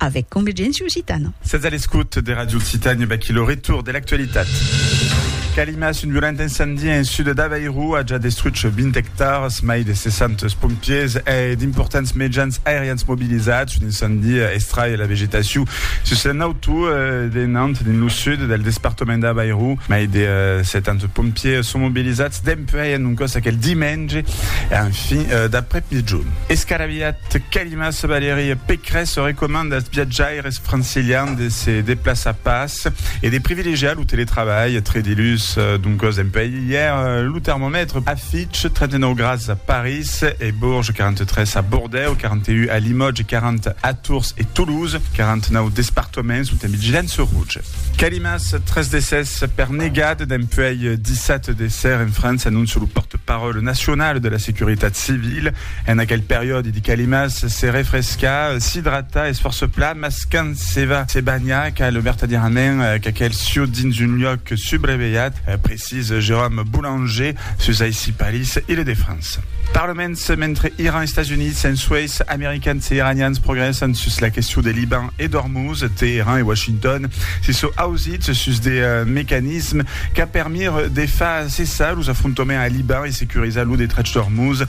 Avèc Convergéncia Occitana. Sètz a l'escòut de Ràdio Occitània, vaquí lo retorn de l'actualitat. Calimas, un violent incendie en sud d'Avairu a ja destruch 20 ectars, mai de 600 pompiers e d'importants mejans aerians mobilizats. Un incendie estrai la vegetacion sus un auto de Nantes, dins lo sud del despartament d'Avairu. Mai de 70 pompiers son mobilizats dempuèi un còs aquel dimenge en fin d'après-migjon. Escaraviat, Mas Valerie Pécresse recomanda als viatjaires francilians de se deplaçar pas e de privilegiar lo teletrabalh tre dilhus. Doncas dempuèi ièr, lo termomètre afiche 39 grads a París e Bourges, 43 a Bordèu, 41 a Limòtge, 40 a Tours e Toulouse. 49 despartaments son en vigilança roja. Calimas, tres decès per negat dempuèi dissat de ser en França, anóncia lo pòrte-paròle nacional de la Securitat Civila. En aquel periòdi di calimas se refrescar, s'idratar es fòrça plan, mas quand se va se banhar cal vertadièrament qu'aquel sieu dins un luòc subrevelhat, precisa Jérôme Boulanger sus aicí Paris, Ile de France. Parlaments, mentre Iran, Estats Units, ensueis Americans e Iranians progrèssan sus la question de Liban e d'Ormuz, Teheran e Washington se sò ausits sus de mecanismes qu'a permire de far cessar los afrontoments a Liban e securizar lo detrach d'Ormuz,